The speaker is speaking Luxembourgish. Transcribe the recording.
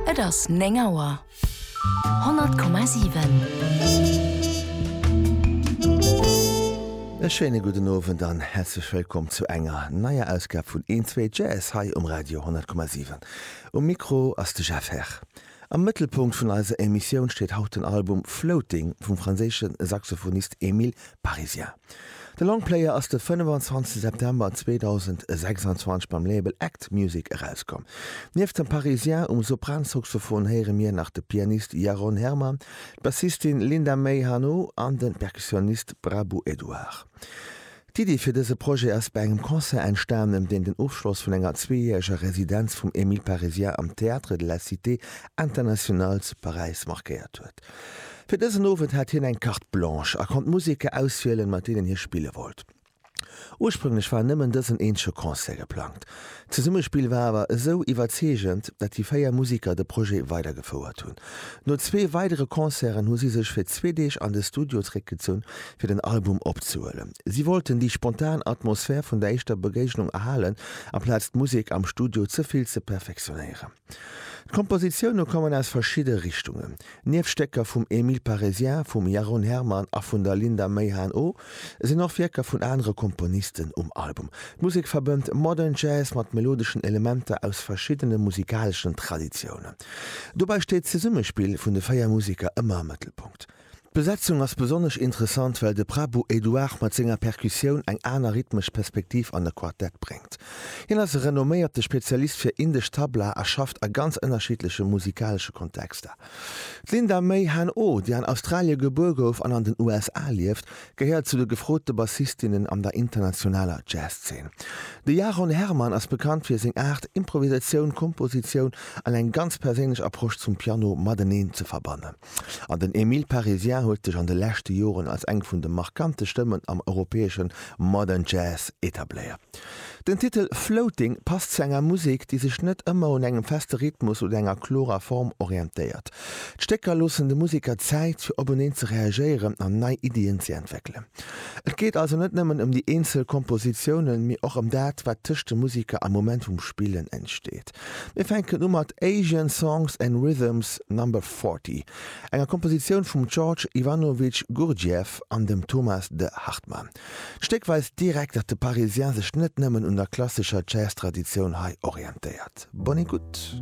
Et ass néng Auer. 100,7. E schéine gudden Owend an häerzlech wëllkomm zu enger neier Ausgab vun Eenzwee Jazz hei um Radio 100,7. Um Mikro ass de Jeff Herr. Am Mëttelpunkt vun eiser Emissioun steet haut den Album Floating vum franséische Saxophonist Emile Parisien. De Longplayer ass de 25 September 2026 beim Label Act Music erauskomm. Nieft dem Parisien um Sopransaxophon héiere mir nach de Pianist Yaron Herman, d'Bassistin Linda May Hanno an de Perkussionist Prabu Edouard. D'Iddi fir dëse Projet ass bei engem Concert entstanen, deen den Ofschloss vun enger zweejäreger Residenz vum Emile Parisien am Théâtre de la Cité Internationale zu Paräis markéiert huet. Fir dësen Owend hat hien eng Carte Blanche a konnt Museker auswielen, mat deenen hie spille wollt. Ursprünglech war nëmmen dësen eenzege Concert geplangt. D'Zesummespill war awer esou iwwerzeegend, dat déi véier Museker de Projet weidergefouert hunn. No zwee weidere Concerten hu si sech fir zwee Deeg an de Studio zeréckgezunn, fir den Album opzehuelen. Si wollten déi spontan Atmosphär vun der éischter Begéignung erhalen, amplaz d'Musek am Studio ze vill ze perfektionéieren. D'Kompositioune kommen aus verschidde Richtungen. Nieft Stécker vum Emile Parisien, vum Jeroen Herman a vun der Linda Meihan-O sinn och Wierker vun anere Komponisten um Album. D'Musek verbënnt Modern Jazz mat melodeschen Elementer aus verschiddene musikaleschen Traditiounen. Dobäi steet d'Zesummespill vun de véier Museker ëmmer am Mëttelpunkt. D'Besetzung ass besonnesch interessant, well de Prabu Eduard mat senger Perkussioun eng aner rhythmesch Perspektiv an e Quartett bréngt. Hien ass e renomméierte Spezialist fir indesch Tabla a schafft a ganz ënnerschiddleche musikalesche Kontexter. D'Linda May Han O, déi an Australie gebuer gouf an an den USA lieft, gehéiert zu de gefrote Bassistinnen an der internationaler Jazz-Zeen. De Jaron Herman ass bekannt fir seng Aart, Improvisatioun, Kompositioun an eng ganz perséinlech Approche zum Piano mateneen ze verbannen. An den Emile Parisien huet sech an de leschte Joren als eng vun de markante Stëmmen am europäesche Modern Jazz etabléiert. Den Titel Floating passt zu enger Musek, déi sech net ëmmer un engem feste Rhythmus oder enger klorer Form orientéiert. D'Stécker loossen de Museker Zäit, fir openeen ze reagéieren an nei Iddien ze entwéckelen. Et geet also net nëmmen ëm déi eenzel Kompositiounen, mee och ëm dat, wat tëscht de Museker am Moment vum Spillen entsteet. Mir fänken u mat Asian Songs and Rhythms Number 40, enger Kompositioun vum George Ivanovich Gurdjieff an dem Thomas de Hartmann. D'Stéck weist direkt, datt de Parisien sech net nëmmen un der klassescher Jazz-Traditioun hei orientéiert. Bonne écoute!